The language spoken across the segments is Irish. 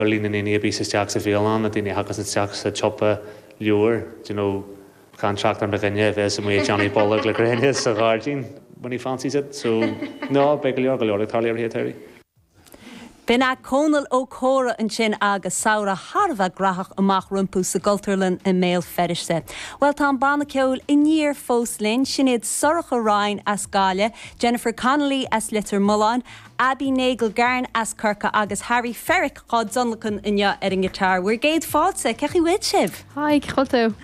ar líon na ndaoine a bíos isteach sa bhialann, na daoine a thagas isteach sa tsiopa leabhar, d'you know, gan trácht ar mo dhuine a bhíos amuigh ag déanamh bolg le gréine sa ghairdín when he fancies it, so no, beidh go leor, go leor ag tarlú. B'in é Cónall Ó Corra ansin agus samhradh thar a bheith gnóthach amach rompu sa gCultúrlann i mBéal Feirste. Bhuel, tá an banna ceoil Aniar fós linn, sin iad Sorcha Ryan as Gaillimh, Jennifer Connolly as Leitir Mealláin, Abby Nagle Garne as Corcaigh agus Harry Ferrick dhá dtionlacan inniu ar an nguitar. Bhur gcéad fáilte. Cén chaoi a bhfuil sibh? Haigh, cén chaoi a bhfuil tú?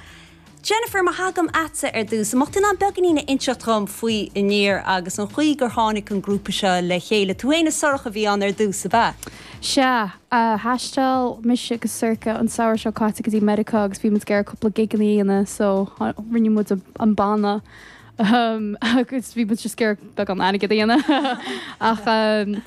Jennifer, má thagaim agatsa ar dtús, an mbeadh tú in ann beagainín a inseacht dom faoi Aniar agus an chaoi gur tháinig an grúpa seo le chéile? Tú fhéin is Sorcha a bhí ann ar dtús, ab ea? Sea. Thaistil mise agus Sorcha an samhradh seo caite go dtí Meiriceá agus bhí muid ag iarraidh cúpla gigeanna a dhéanamh so rinne muid an banna. agus bhí muid ag iarraidh beagán airgid a dhéanamh. Ach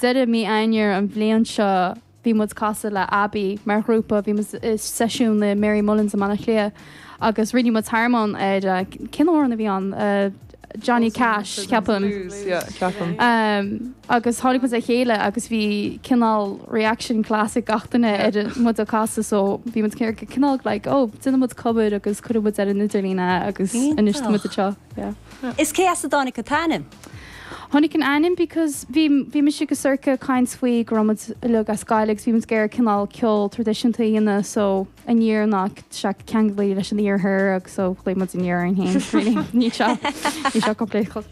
deireadh mí Eanáir an bhliain seo bhí muid ag casadh le Abbey mar ghrúpa, bhí muid i seisiún le Mary Mullins i mBaile Átha Cliath agus rinne muid harmony ar, cén t-amhrán a bhí ann? Johnny Cash, ceapaim. Blues, yeah, ceapaim. Agus tháinig muid le chéile agus bhí cineál reaction class ag gach duine ar muid ag casadh so bhí muid ar cineál like oh déanann muid cover agus cuireann muid ar an idirlíon é agus anois tá muid anseo. Yeah. Is cé as a dtáinig an t-ainm? Tháinig an ainm because bhí bhí mise agus Sorcha ag caint faoi go raibh muid uileag as Gaillimh agus bhí muid ag iarraidh cineál ceol traidisiúnta a dhéanamh so aniar tá sé ceangailte leis an iarthar agus so ghlaoigh muid aniar orainn féin really. Ní seo ní seo complete.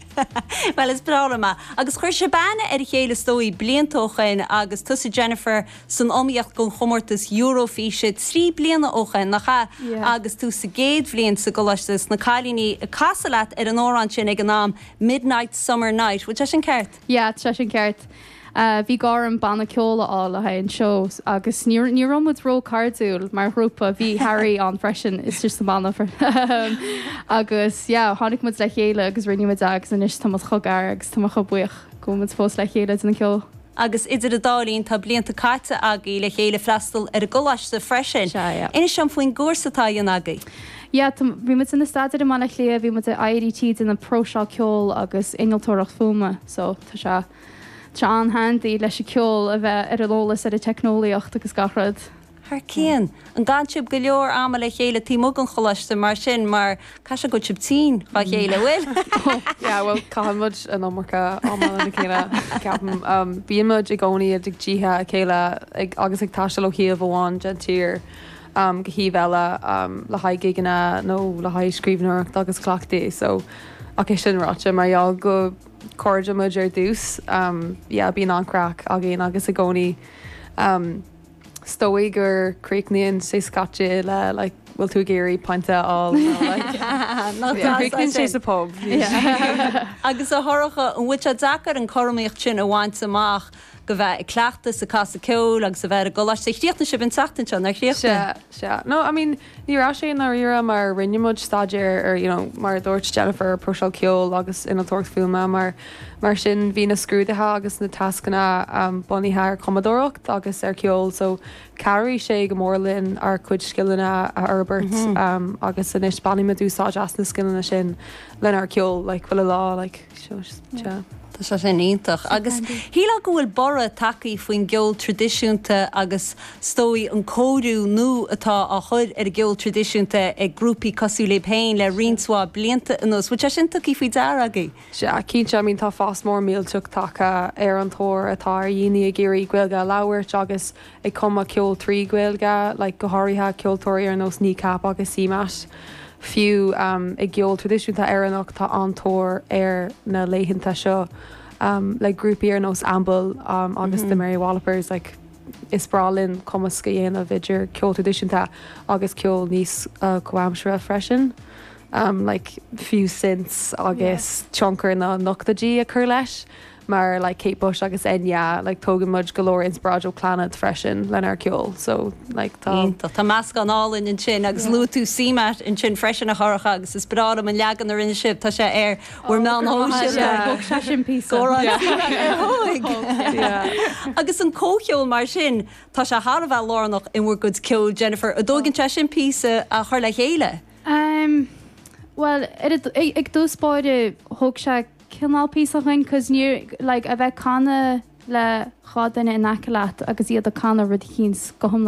Bhuel, is breá liom é. Agus chuir sibh aithne ar a chéile is dóigh, blianta ó shoin, agus tusa Jennifer san iomaíocht don chomórtas Eurofíse trí bliana ó shoin, nach ea? Yeah. Agus tú sa gcéad bhliain sa gcoláiste, is na cailíní ag casadh leat ar an amhrán sin ag an am, Midnight Summer Night, bhfuil sé sin ceart? Yeah, tá sé sin ceart. Bhí gá orm banna ceoil a fháil le haghaidh an seó agus ní raibh muid ró-cairdiúil mar ghrúpa, bhí Harry ann freisin, is tusa an banna ahem. Agus yeah, tháinig muid le chéile agus rinne muid é agus anois tá muid chomh gar agus tá mé chomh buíoch go bhfuil muid fós le chéile ag déanamh ceoil. Agus idir an dá linn tá blianta caite agaibh le chéile ag freastal ar an gcoláiste freisin. Sea, yeah. Inis dom faoin gcúrsa atá á dhéanamh agaibh. Yeah, tá, bhí muid inár staidéar i mBaile Átha Cliath, bhí muid in IADT ag déanamh próiseáil ceoil agus innealtóireacht fuaime, so tá sé. Tá sé an-handy leis an ceol a bheith ar an eolas ar an teicneolaíocht agus gach rud. Thar cionn. An gcaitheann sibh go leor ama le chéile taobh amuigh den choláiste mar sin mar caithfidh sé go bhfuil sibh tinn dá chéile, bhfuil? Yeah, bhuel, caitheann muid an iomarca ama lena chéile, ceapaim. Bíonn muid i gcónaí i dtithe a chéile ag agus ag taisteal ó thaobh amháin den tír go taobh eile le haghaidh gigeanna nó le haghaidh scríbhneoireacht agus cleachtadh. So, ach é sin ráite, mar gheall go. cairde muid ar dtús. Yeah, bíonn an-craic againn agus i gcónaí. 'S dóigh go gcríochnaíonn sé scaití le like 'bhfuil tú ag iarraidh pint a fháil? nó like Nó tá Críochnaíonn sé sa pub. Agus a Shorcha, an bhfuil sé deacair an cothromaíocht sin a bhaint amach, a bheith ag cleachtadh is ag casadh ceoil agus a bheith ar an gcoláiste? Chríochnaigh sibh an tseachtain seo, nár chríochnaigh? Sea, sea. No, I mean. Ní raibh sé i ndáiríre mar rinne muid staidéar ar you know mar a dúirt Jennifer próiseáil ceoil agus innealtóireacht fuaime mar sin bhí na scrúduithe agus na tascanna bunaithe ar chumadóireacht agus ar ceol so cabhraigh sé go mór linn ár cuid scileanna a fhorbairt agus anois bainimid úsáid as na scileanna sin lenár ceol le Buíoch like Seo, seo. Tá sé sin iontach. Agus shílfeá go bhfuil borradh tagthaí faoin gceol tradisiúnta agus is dóigh an cóiriú nú atá á chur ar an gceol tradisiúnta ag grúpaí cosúil lib féin le roinnt mhaith blianta anuas. Bhfuil sé sin tugthaí faoi dear agaidh? Sea, cinnte, I mean tá fás mór millteach tagtha ar an tóir atá ar dhaoine ag iarraidh Gaeilge a labhairt agus ag cumadh ceoil trí Ghaeilge, like go háirithe ceoltóirí ar nós Kneecap agus CMAT. Fiú i gceol traidisiúnta Éireannach tá an-tóir air na laethanta seo, like grúpaí ar nós Amble agus The Mary Wallopers, like is breá linn cumasc a dhéanamh idir ceol traidisiúnta agus ceol níos comhaimseartha freisin, like fiú synths agus tionchar na n-ochtóidí a chur leis. mar like Kate Bush agus Enya like tógann muid go leor inspioráid ó Clannad freisin lenár ceol so like tá Iontach. Tá meascán álainn ansin agus luaigh tú CMAT ansin freisin a Shorcha agus is breá liom an leagan a rinne sibh, tá sé ar bhur meáin shóisialta. Thóg sé sin píosa. Agus an comhcheol mar sin, tá sé thar a bheith lárnach in bhur gcuid ceoil Jennifer, an dtógann sé sin píosa a chur le chéile? Bhuel i dtús báire thóg sé cineál píosa againn cause níor like a bheith ag canadh le dhá duine in aice leat agus iad ag canadh rud eicínt go hiomlán.